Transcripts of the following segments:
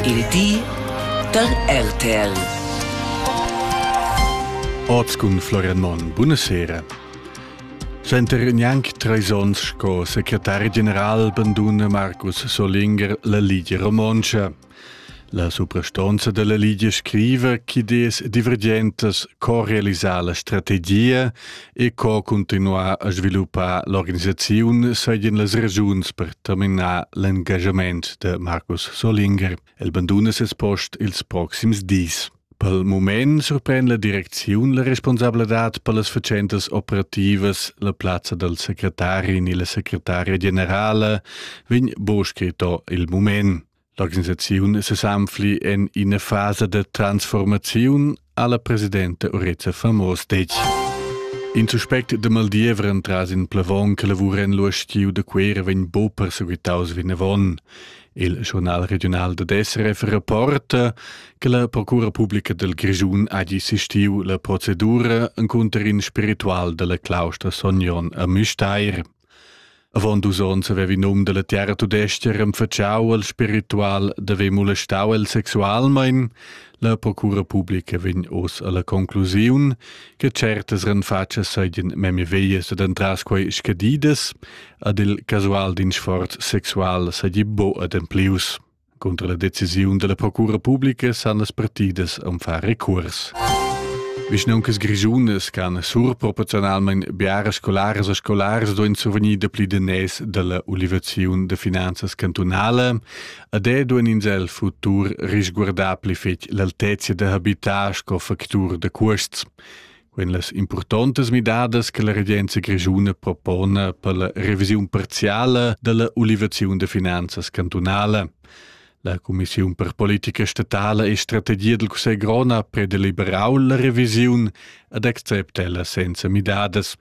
Il di da RTL. Oz cun Florian Monn. Buonasera. Center gnanc treis onns sco secretari general banduna Marcus Solinger la Ligia Romontscha. La suprastonza della Ligia scriva che des divergentas co realizar la strategia e co cuntinuar a sviluppar l'organisaziun seigien las regiuns per terminar l'engagement de Markus Solinger. El banduna ses post ils proxims dis. Per moment sorprende la direcziun la responsabladad per las facentas operativas, la plazza del secretarin e la secretaria generale, vegn bo scritto il moment. L'organisaziun sesanfli en ina fasa da transformaziun alla presidenta Urezza Famos detg. In suspect de Maldievre entras in plavon che lavura en l'uostiu de Quera vegn bo perseguitaus vinavon. Il journal regional de SRF rapporta che la procura pubblica del Grischun ha assistiu la procedura inconter in spiritual della claustra Sognon a Müstair. Avon dus onns havevi num dalla terra tudestga renfatschau al spiritual d'haver molestau el sexualmein. La procura publica vegn oz alla conclusiun che certas renfatschas seigien memia veglias ed entras quei scadidas, ad il casual din sforz sexual seigi buca ademplius. Contra la decisiun dalla procura publica san las partidas am far recurs. Vischnauncas grischunas can surproporziunalmein biaras scolaras e scolars duein survegnir dapli danès dalla ulivaziun da finanzas cantunala ed è duein ins el futur risguardar pli fetg l'altezia da habitar sco factur da cuosts. en las importantas midadas che la regenza grischuna propona per la revisiun parziale della ulivaziun de finanzas cantunale. La Commissiun per politica statale e strategia del Cussegl Grona predeliberau la revisiun ad accepta ella senza midadas.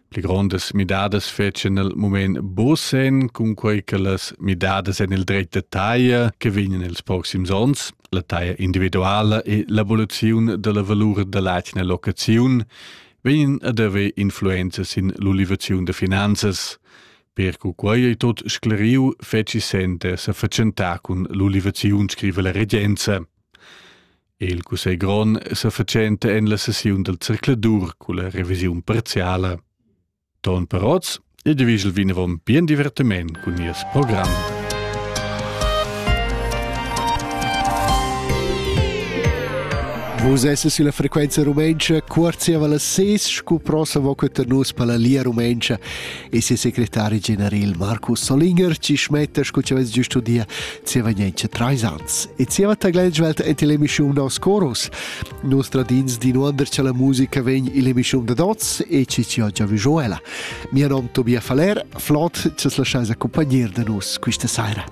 pli grondas midadas fetschen nel moment bosen cun quei che las midadas en il dret de taglia che vegnan els proxims ons la taglia individuala e l'evoluzione della valur dell'atgna locazione vegnan ad haver influenzas in l'ulivazione de finanzas per cu quei ei tot scleriu feci sente sa fatschentar cun l'ulivazione scrive la regenza Il cussegl grond sa fatschenta en la sessiun dal circladur culla revisiun parziala. Ton Peroz e divigel vinavon bien divertiment cun nies program. Vus esses sulla frequenza rumentscha, cuorziava la ses, scu prosa vo cunter nus per la lia rumentscha. e ses secretari general Marcus Solinger ci schmetta sco che avess già studia zieva niente trais ans. E zieva taglentschwelt ent l'emissiun nos coros. Nos tradins di nuonder che la musica vegn ill'emissiun da dots e ci ci oggi vijuela. Mia nom Tobias Faller, flot, che as lasciais accompagnar da nus questa saira.